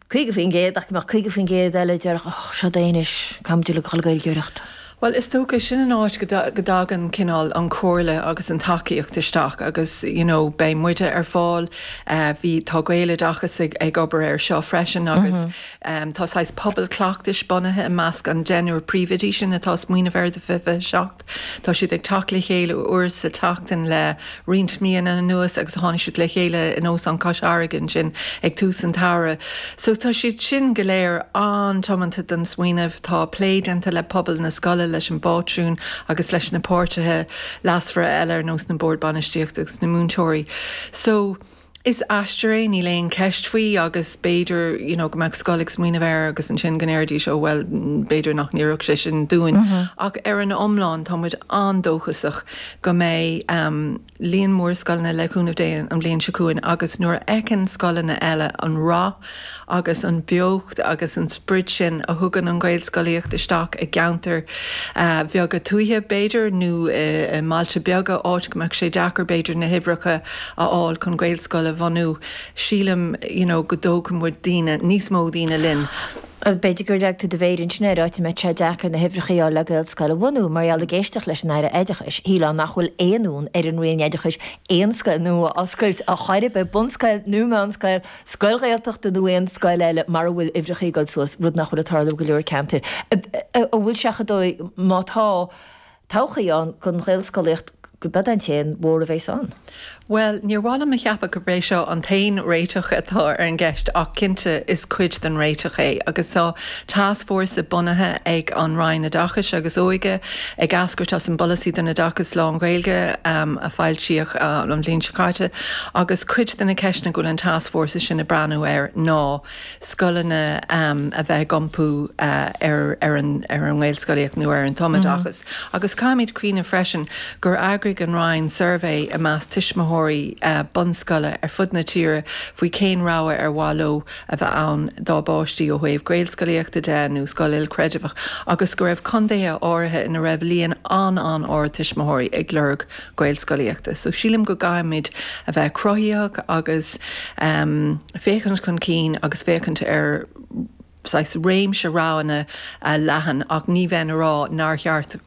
50% ach go mbeadh 50% eile a déarfadh Och, seod é anois, caithfimid a dhul ag Gaeilgeoireacht. Bhuel, is dócha, sin an áit go dtagann cineál an chomhairle agus an tacaíocht isteach agus you know beidh muide ar fáil, bhí, tá Gaeloideachas ag obair air seo freisin agus tá saghas pobal cleachtais bunaithe i measc an deichniúr príomhoidí sin atá ag smaoineamh air do 2027. Tá siad ag teacht le chéile uair sa tseachtain le roinnt míonna anuas agus tháinig siad le chéile in Óstán Cois Fharraige ansin ag tús an tsamhraidh. So tá siad sin go léir an-tiomanta don smaoineamh. Tá plé déanta le pobal na scoile, leis an bpátrún agus leis na páirtithe leasmhara eile ar nós na Boird Bainistíochta agus na múinteoirí. So. Is aistear é, níl aon cheist faoi agus b'fhéidir, you know, go mbeadh scoil ag smaoineamh air agus ansin go ndéarfaidís, oh well, b'fhéidir nach n-oirfeadh sé sin dúinn. Ach ar an iomlán, tá muid an-dóchasach go mbeidh líon mór scoileanna, le cúnamh Dé, an bhliain seo chugainn agus nuair a fheiceann scoileanna eile an rath, agus an bheocht agus an sprid sin a thugann an Ghaelscolaíocht isteach i gceantair bheaga tuaithe, b'fhéidir, nó i mbailte beaga, áit go mbeadh sé deacair, b'fhéidir, na huimhreacha a fháil chun Gaelscoil a bhunú. Sílim, you know, go dtógfaidh muid daoine, níos mó daoine linn. B'fhéidir gur leag tú do mhéir ansin air, áit a mbeadh sé deacair na huimhreacha a fháil le Gaelscoil a bhunú, mar gheall, ag éisteacht leis an Aire Oideachais, shílfeá nach bhfuil aon fhonn ar an Roinn Oideachais aon scoil nua a oscailt chor ar bith, bunscoil nó meánscoil, scoil Ghaeltachta nó aon scoil eile mara bhfuil uimhreacha ag dul suas, rud nach bhfuil ag tarlú i go leor ceantair, a bhfuil seachas dóibh, má tá, todhchaí ann don Ghaelscolaíocht, gurb é an t-aon mhodh a bheas ann. Bhuel, níor mhaith liom a cheapadh gurb é seo an t-aon réiteach atá ar an gceist ach cinnte is cuid den réiteach é agus so Tascfhórsa bunaithe ag an Roinn Oideachais agus Óige, ag eascairt as an bPolasaí don Oideachas Lán-Ghaeilge a foilsíodh an bhliain seo caite, agus cuid de na ceisteanna go bhfuil an tascfhórsa sin ag breathnú air ná scoileanna a bheith ag iompú ar an nGaelscolaíocht nó ar an tumoideachas. Agus caithfimid cuimhneamh freisin gur eagraigh an Roinn suirbhé i measc tuismitheoirí bunscoile ar fud na tíre faoi cén rogha ar mhaith leo, a bheith ann dá bpáistí ó thaobh Gaelscolaíochta de nó scoil ilchreidmheach agus go raibh contaetha áirithe ina raibh líon an-an-ard tuismitheoirí ag lorg Gaelscolaíochta. So sílim go gcaithfimid a bheith cruthaitheach agus féachaint chun cinn agus féachaint ar saghas réimse roghanna leathan ach ní bheinn ag rá nár cheart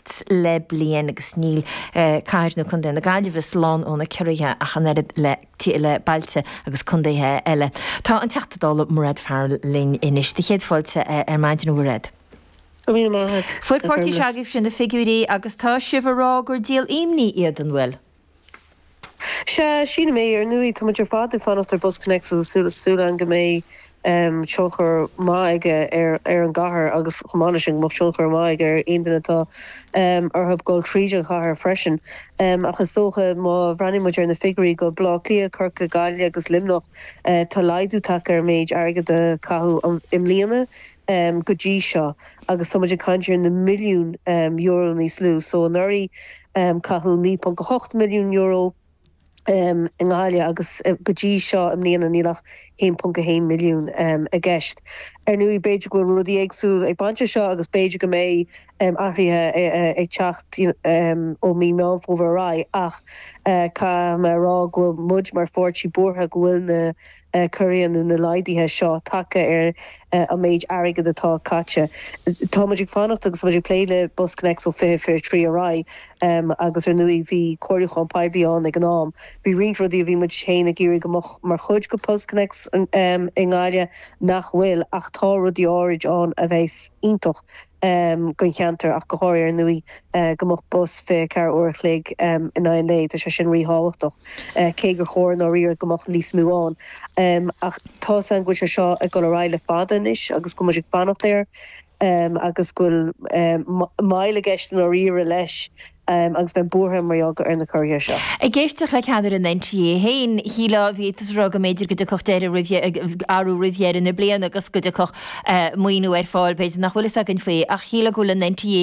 ocht le bliain agus níl Cathair nó Contae na Gaillimhe slán ó na ciorruithe ach an oiread le bailte agus contaetha eile. Tá an Teachta Dála Mairéad Farrell linn anois. Dé do chéad fáilte ar maidin, a Mhairéad. Go raibh míle maith agat. Fuair an páirtí seo agaibhse na figiúirí agus tá sibh ag rá gur díol imní iad, an bhfuil? Sea, sílim é. Ar ndóigh, tá muid ar fad ag fanacht ar BusConnects agus súil ann go mbeidh tionchar maith aige ar an gcathair agus, chomh maith leis sin, go mbeadh tionchar maith aige ar aon duine atá orthu dul tríd an chathair freisin. Ach is dócha, má bhreathnaíonn muid ar na figiúirí go Bleá Cliath, Corcaigh, Gaillimh agus Luimneach, tá laghdú tagtha ar an méid airgid a caitheadh i mbliana go dtí seo agus tá muid ag caint ar na milliúin euro níos lú. So, anuraidh. Caitheadh €9.8 milliún euro i nGaillimh agus go dtí seo i mbliana níl ach €1.1 milliún i gceist. Ar ndóigh, b'fhéidir go bhfuil rudaí éagsúil ag baint leis seo agus b'fhéidir go mbeidh athruithe ag teacht ó mhí Meán Fómhair ar aghaidh ach caithfidh mé a rá go bhfuil muid mar pháirtí buartha go bhfuil na Go bhfuil na laghduithe seo tagtha ar an méid airgid atá caite. Tá muid ag fanacht agus tá muid ag plé le BusConnects ó 2023 ar aghaidh agus ar ndóigh bhí comhairliúchán poiblí ann ag an am. Bhí roinnt rudaí a bhí muid féin ag iarraidh go mbeadh mar chuid de BusConnects i nGaillimh nach bhfuil ach tá rudaí áirid ann a bheas iontach. don cheantar ach go háirithe, ar ndóigh, go mbeadh bus 24 uair a chloig in aghaidh an lae. Tá sé sin ríthábhachtach, cé gur chóir i ndáiríre go mbeadh níos mó ann. Ach tá's agam go bhfuil sé seo ag dul ar aghaidh le fada anois agus go bhfuil muid ag fanacht air agus go bhfuil moill i gceist i ndáiríre leis. agus bheinn buartha mar gheall ar na ciorruithe seo. Ag éisteacht le ceannaire an NTA féin, shílfeá go mb'fhéidir go dtiocfadh deireadh roimh athrú roimh dheireadh na bliana agus go dtiocfadh maoiniú ar fáil. B'fhéidir nach bhfuil fhios againn faoi ach shílfeá go bhfuil an NTA